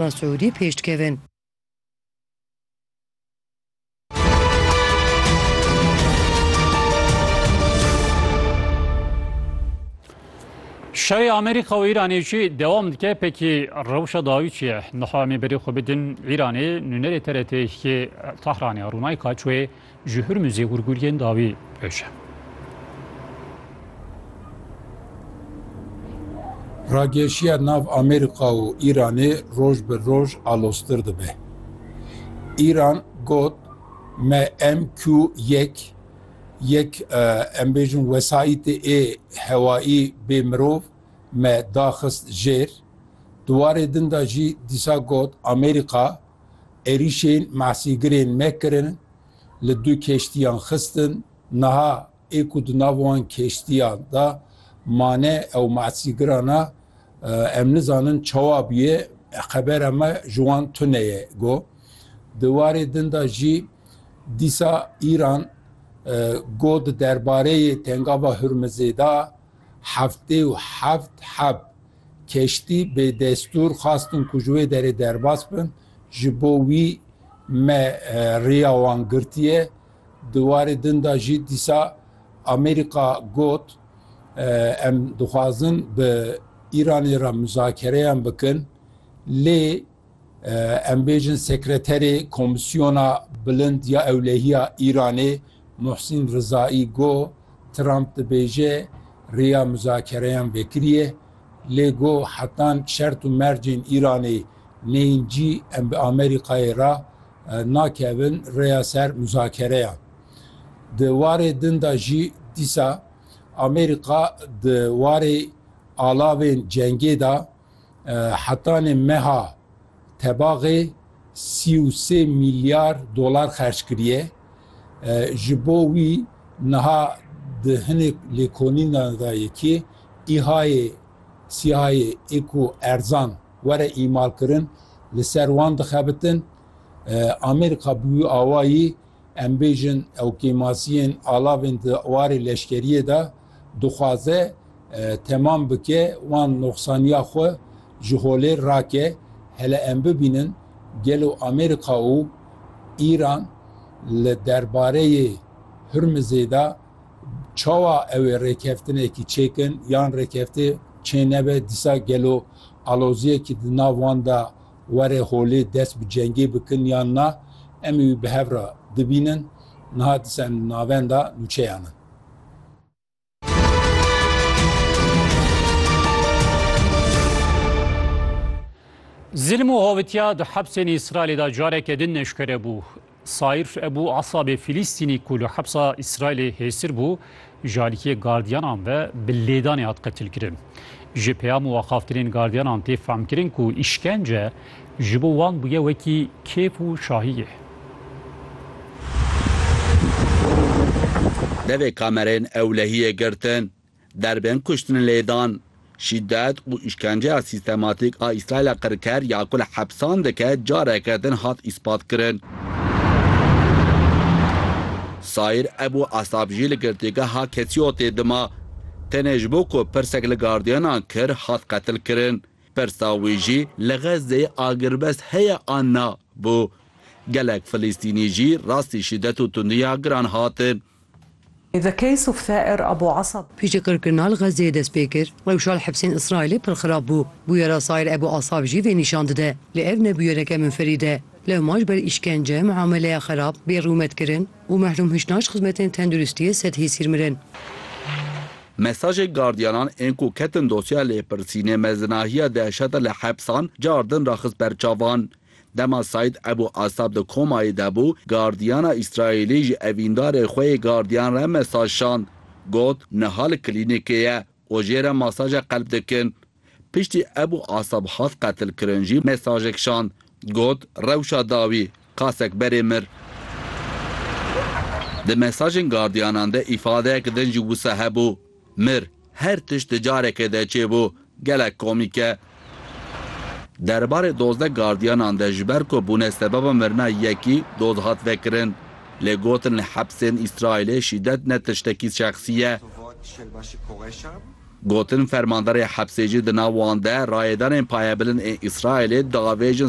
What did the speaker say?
Ba Siûdî pêş dikevin. Şerê Amerîka û Îranê jî dewam dike pekî rewşa dawî çi ye? Niha em ê berê xwe bidin Îranê, nûnerê TRT'ê yê Tehranê Rûnayka Çûyê Ji Hurmuzê gurguriyên dawî ewş e. Rageşiya nav Amerîka û Îranê roj bi roj aloztir dibe. Îran got me MQ yek, yek em bêjin wesayîtê ê hewayî bê mirov me daxist jêr. Di warê din de jî dîsa got Amerîka Êrîşên Masîgirên me kirin, li du keştiyan xistin, niha ê ku di nav wan keştiyan de mane ew masîgira ne, em nizanin çawa bûye, xebera me ji wan tune ye got. Di warê din de jî dîsa Îran got di derbareyê tengava Hurmizê de heftê û heft heb Keştî bi destûr xwastin ku ji wê derê derbas bin, ji bo wî me rêya wan girtiye. Di warê din de jî dîsa Amerîka got, Em dixwazin bi Îranê re muzakereyan bikin lê, Em bêjin Sekreterê Komîsyona Bilind ya Ewlehiya Îranê Muhsîn Rizaî got, Trump dibêje rêya muzakereyan vekiriye, lê got, hetan şert û mercên Îranê neyên cî em bi Amerîkayê re nakevin rêya ser muzakereyan. Di warê din de jî dîsa Amerîka di warê alavên cengê de, Hetanê meha tebaxê sî û sê mîlyar dolar xerc kiriye. Ji bo wî niha di hinek lêkolînan de ye kê îhayê sîhayê ê ku erzan were îmalkirin li ser wan dixebitin. Amerîka bi wî awayî Em bêjin ew kêmasiyên alavên di warê leşkeriyê de dixwaze temam bike wan noxsaniya xwe ji holê rake. Hele em bibînin gelo Amerîka û Îran li derbareyê Hurmizê de çawa ew ê rêkeftinekî çêkin yan rêkefte çênebe dîsa gelo aloziyekî di nav wan de Were holê dest bi cengê bikin yan na, em ê wî bi hev re bibînin. Niha disen li navenda nûçeyan in. Zilm û hovitiya di hepsên Îsraîlê de careke din neşkere bû. Saîr Ebû Esabê Fîlîstînî ku li hepsa Îsraîlê hêstir bû, ji alîkiyê gardiyanan ve bi lêdanê hat qetilkirin. Ji peyam û axaftinên gardiyanan tê fehmkirin ku îşkence ji bo wan bûye wekî kêf û şahiyê. Devê kamereyên ewlehiyê girtin. Derbên kuştin lêdan, şîdet û îşkenceya sîstematîk a Îsraîla qirker ya ku li hepsan dike careke din hat îspatkirin. Saîr Ebû Esab jî li girtîgeha Ketsîyotê dima. Tenê ji bo ku pirsek li gardiyanan kir hat qetilkirin. Pirsa wî jî li Xezzeyê agirbest heye an na bû. Gelek Filistînî jî rastî şîdet û tundiya giran hatin. The case of Thaer Abu Asab. Piştî qirkirina li Xezzeyê dest pê kir, rewşa li hepsên Îsraîlê pir xirab bû. Bûyera Saîr Ebû Asab jî vê nîşan dide. Lê ev ne bûyereke minferîd e. Lewma ji ber îşkence, miameleya xirab, bêrûmetkirin û mehrûmhiştina ji xizmetên tenduristiyê sed hêsîr mirin. Mesajê gardiyanan ên ku ketin dosyeya lêpirsînê mezinahiya dehşete li hepsan cardin ra xist ber çavan. Dema Saîd Ebû Asab di komayê de bû, gardiyana Îsraîlî ji evîndarê xwe yê gardiyan re mesaj şand. Got, Niha li klînîkê ye û jê re masaja qelb dikin. Piştî Ebû Asab hat qetilkirin jî mesajek şand. Got, Rewşa dawî, qasek berê mir. Di mesajên gardiyanan de îfadeyek din jî wisa hebû. Mir her tişt di careke de çêbû gelek komîk e. Derbarê dozdeh gardiyanan de ji ber ku bûne sebeba mirina yekî doz hat vekirin. Lê gotin li hepsên Îsraîlê şîdet ne tiştekî şexsî ye. Gotin fermanderê hepsê jî di nav wan de rayedanên payebilind ên Îsraîlê diavêjin